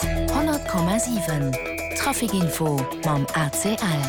100,7 Trafic-Info mam ACL.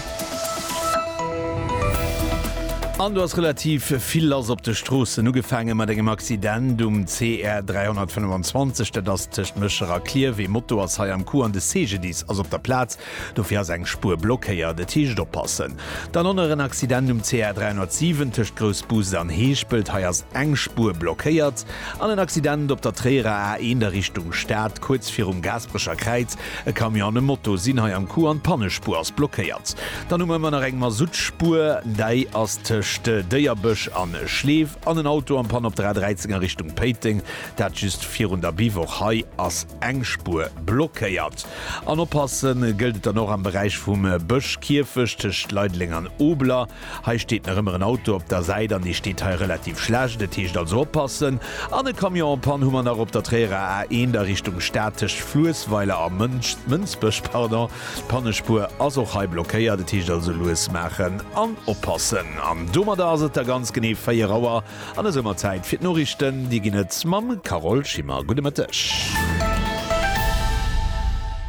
An do ass relativ vill lass op de Stroossen. Ugefaange mat engem Accident um CR 325, dat ass tëscht Méchera a Klierf. Ee Moto ass hei am Coup an de CGDIS ass op der Plaz. Dofir ass eng Spuer blockéiert, et heescht oppassen. Dann och nach en Accident um CR 307 tëscht Groussbus an Heeschpelt, hei ass eng Spuer blockéiert. An en Accident op der Tréierer A1 a Richtung Stad, kuerz virum Gaasperecher Kräiz, e Camion an e Moto sinn hei am Coup an d'Pannespuer ass blockéiert. Dann hu mer ëmmer nach eng Masuttspur, däi ass tëscht Déierbësch an Schleef, an en Auto am Panne op der A13 a Richtung Péiteng, dat just virun der Biwoch, hei ass eng Spuer blockéiert. An oppasse gëllt et dann och am Beräich vum Bëschkierfecht tëscht Leideleng an Obeler. Hei steet nach ëmmer en Auto op der Säit an dee steet hei relativ schlecht. Et heescht also oppassen. An e Camion en panne hu mer nach op der Tréierer A1 a Richtung Stad tëscht Fluessweiler a Mënsbech. Pardon, d'Pannespuer ass och hei blockéiert. Et heescht also lues maachen an oppassen. An domadder ass et da ganz genee 4 Auer. An esou mer Zäit fir d'Noriichten. Déi ginn et mam Carole Schimmer. Gudde Mëtteg.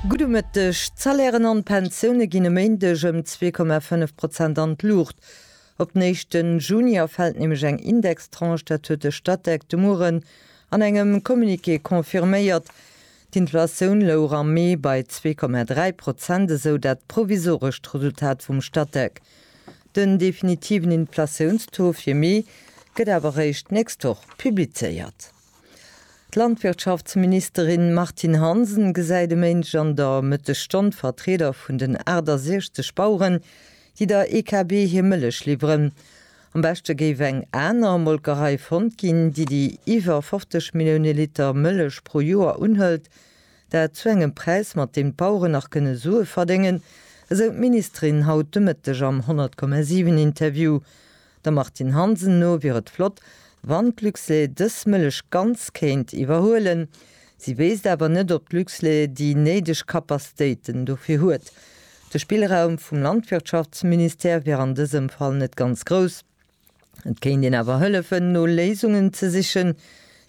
Gudde Mëtteg. D'Salairen an d'Pensioune ginn e Méindeg ëm zwee Komma fënnef Prozent an d'Luucht. Op den éischte Juni erfält nämlech eng Indextranche. Dat huet de Statec de Mueren an engem Communiqué confirméiert. D'Inflatioun louch am Mee bei zwee Komma dräi Prozent, esou dat provisorescht Resultat vum Statec. Den definitiven Inflatiounstaux fir Mee gëtt awer réischt d'nächst Woch publizéiert. D'Landwirtschaftsministerin Martine Hansen gesäit e Méindeg an der Mëttesstonn d'Vertrieder vun den 68 Baueren, déi der EKB hir Mëllech liwweren. Am beschte géif eng aner Molkerei fonnt ginn, déi déi iwwer 50 Millioune Liter Mëllech pro Joer unhëlt. Dat zu engem Präis, mat deem d'Baueren nach kënne Sue verdéngen, esou d'Ministerin haut de Mëtteg am 100,7 Interview. Der Martine Hansen no wier et flott, wann d'Luxlait dës Mëllech ganz kéint iwwerhuelen. Si wéisst awer net, ob d'Luxlait déi néideg Kapaztéiten dofir huet. De Spillraum vum Landwirtschaftsministère wier an dësem Fall net ganz grouss. Et kéint een awer hëllefen, no Léisungen ze sichen.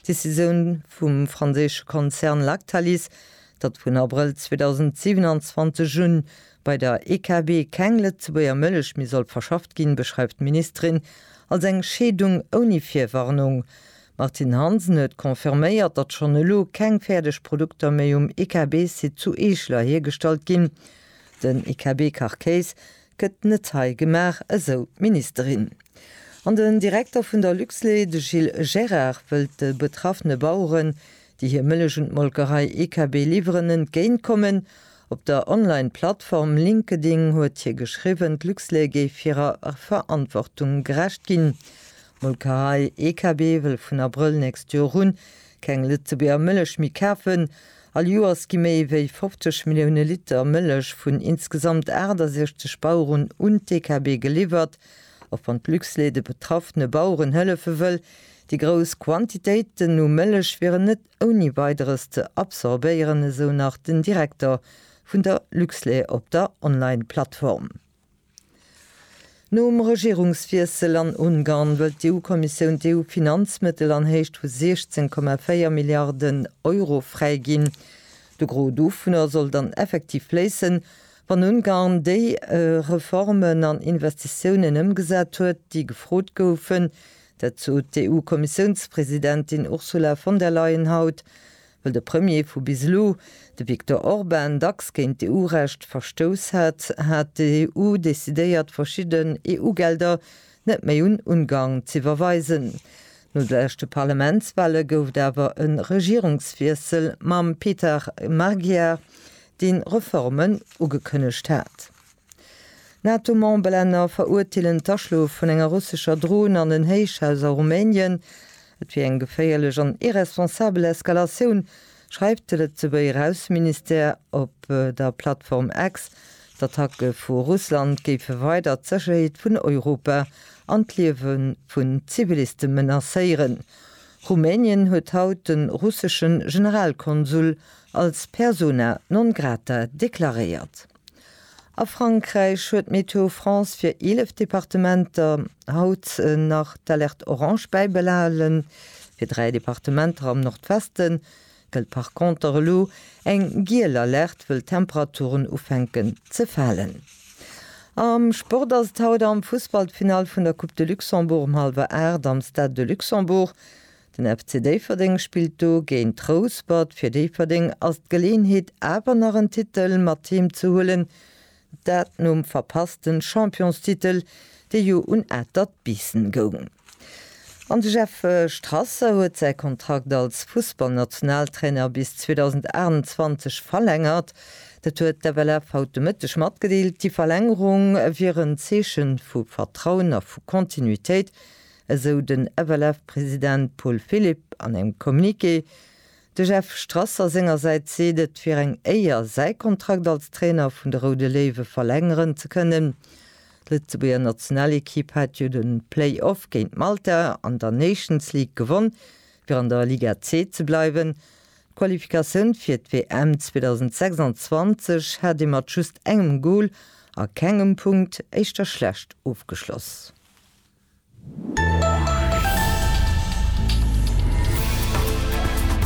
D'Decisioun vum franséische Konzern Lactalis, datt vun Abrëll 2027 un bei der EKB keng Lëtzebuerger Mëllech méi soll verschafft ginn, beschreift d'Ministerin als eng Scheedung ouni Virwarnung. D'Martine Hansen huet confirméiert, datt schonn elo keng fäerdeg Produkter méi um EKB-Site zu Eeschler hiergestallt ginn. Den EKB-Kachkéis Gëtt net hei gemaach, esou d'Ministerin. An den Direkter vun der Luxlait, de Gilles Gérard, wëllt de betraffene Baueren, déi hir Mëllech un d'Molkerei EKB liwweren, entgéintkommen. Op der Online-Plattform LinkedIn huet hie geschriwwen, d'Luxlait géif hirer Verantwortung gerecht ginn. D'Molkerei EKB wëll vun Abrëll nächst Joer un Keng Lëtzebuerger Mëllech méi kafen. All Joers gi méi wéi 50 Millioune Liter Mëllech vun insgesamt 68 Baueren un d'DKB geliwwert. Och wann d'Luxlait de betraffene Baueren hëllefe wëll, déi grouss Quantitéiten u Mëllech wieren net ouni Weideres ze absorbéieren, esou nach den Direkter vun der Luxlait op der Online-Plattform. Nom Regierungswiessel an Ungarn wëllt d'EU-Kommissioun d'EU-Finanzmëttel an Héicht vu 16,4 Milliarden Euro fräiginn. De Gros dovunner soll dann effektiv fléissen, wann Ungarn déi Reformen an Investitiounen ëmgesat huet, déi gefrot goufen. Dat sot d'EU-Kommissiounspresidentin Ursula von der Leyen haut. Well de Premier vu bis elo, de Viktor Orban, dacks géint d'EU-Recht verstouss hat, hat d'EU decidéiert, verschidde EU-Gelder net méi un Ungarn z'iwwerweisen. No de leschte Parlamentswale gouf et awer e Regierungswiessel mam Peter Magyar, dee Reformen ugekënnegt hat. Nato-Memberlänner verurteelen d'Aschlof vun enger russescher Dron an en Héichhaus a Rumänien. Et wier eng geféierlech an irresponsabel Eskalatioun, schreift de Lëtzebuerger Ausseministère op der Plattform X. D'Attacke vu Russland géife weider d'Sécherheet vun Europa an d'Liewe vun Ziviliste menacéieren. Rumänien huet haut de russesche Generalkonsul als persona non grata deklaréiert. A Frankräich huet Météo France fir 11 Departementer haut nach d'Alerte orange bäibehalen. Fir dräi Departementer am Nordweste gëllt par conter elo eng giel Alerte, wëll d'Temperaturen ufänken ze falen. Am Sport ass et haut am Fussball d'Finall vun der Coupe de Luxembourg um hallwer 8 am Stade de Luxembourg. Den FC Déifferdeng spillt do géint Rouspert. Fir Déifferdeng ass d'Geleenheet awer nach en Titel mat heem ze huelen, dat nom verpasste Championstitel, dee jo un Atert Biissen goung. An de Jeff Strasser huet säi Kontrakt als Fussballnationaltrainer bis 2028 verlängert. Dat huet d'FLF haut de Mëtteg matgedeelt. Déi Verlängerung wier en Zeeche vu Vertrauen a vu Kontinuitéit, esou den FLF-President Paul Philipp an engem Communiqué. De Jeff Strasser sengersäits seet et wier eng Éier, säi Kontrakt als Trainer vun de Roude Léiwe verlängeren ze kënnen. D'Lëtzebuerger Nationalekipp hat jo de Play-Off géint Malta an der Nations League gewonn, fir an der Liga C ze bleiwen. D'Qualifikatioun fir d'WM 2026 hat ee mat just engem Gol a kengem Punkt éischter schlecht ofgeschloss.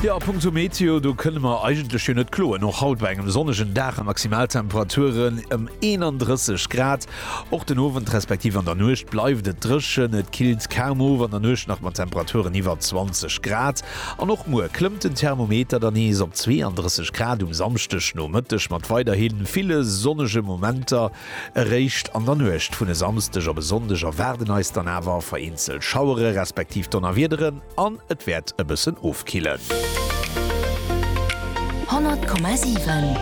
Jo, a punkto Meteo, do kënne mer eigentlech jo net kloen. Och haut bei engem sonnegen Dag a Maximaltemperaturen ëm 31 Grad. Och den Owend respektiv an der Nuecht bleift et dréchen. Et killt kaum of an der Nuecht nach mat Temperaturen iwwer 20 Grad. An och muer klëmmt den Thermometer dann nees op 32 Grad um Samschdegnomëtteg mat weiderhi ville sonnege Momenter. Eréischt an der Nuecht vun e Samsdeg op e Sonndeg erwaarden eis dann awer vereenzelt Schauere respektiv Donnerwiederen an et wäert e bëssen ofkillen. 100,7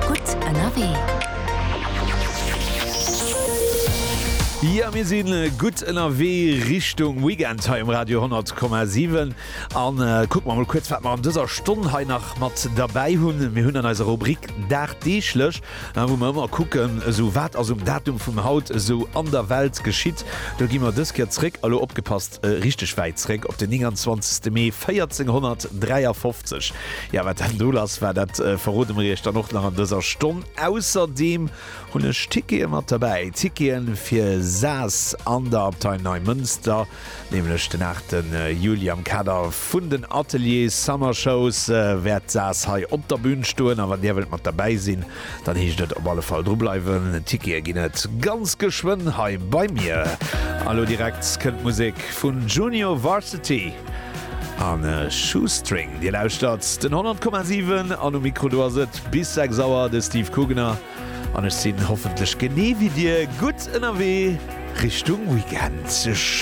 gutt ënnerwee. Jo, mir si gutt ënnerwee Richtung Weekend hei um Radio 100,7 an kucke mer emol kuerz, wat mer an dëser Stonn hei nach mat derbäi hunn. Mir hunn an eiser Rubrik Dagdeeglech An wou mer ëmmer kucken, esou wat ass um Datum vum haut esou an der Welt geschitt, do gi mer dës Kéier zréck, a lo opgepasst, richteg wäit zréck, op den 29 Mee 1453. Jo, wat dann do lass war, dat verrode mer iech dann och nach an dëser Stonn. Ausserdeem hunn ech Tickete mat derbäi, Tickete fir Saas an der Abtei Neimënster. Nämlech den 8 Juli am Kader vun den Atelier Summer Shows wäert d'Saas hei op der Bühn stoen a wann dir wëllt mat derbäi sinn, dann heescht et op alle Fall dru bleiwen. Tickete ginn et ganz geschwënn hei bei mir. A lo direkt kënnt Musek vun Junior Varsity a Shoestring. Dir lauschtert den 100,7 an um Mikro do ass et bis 6 Auer de Steve Kugener an ech sinn hoffentlech genee wéi dir gutt ënnerwee Richtung Weekend.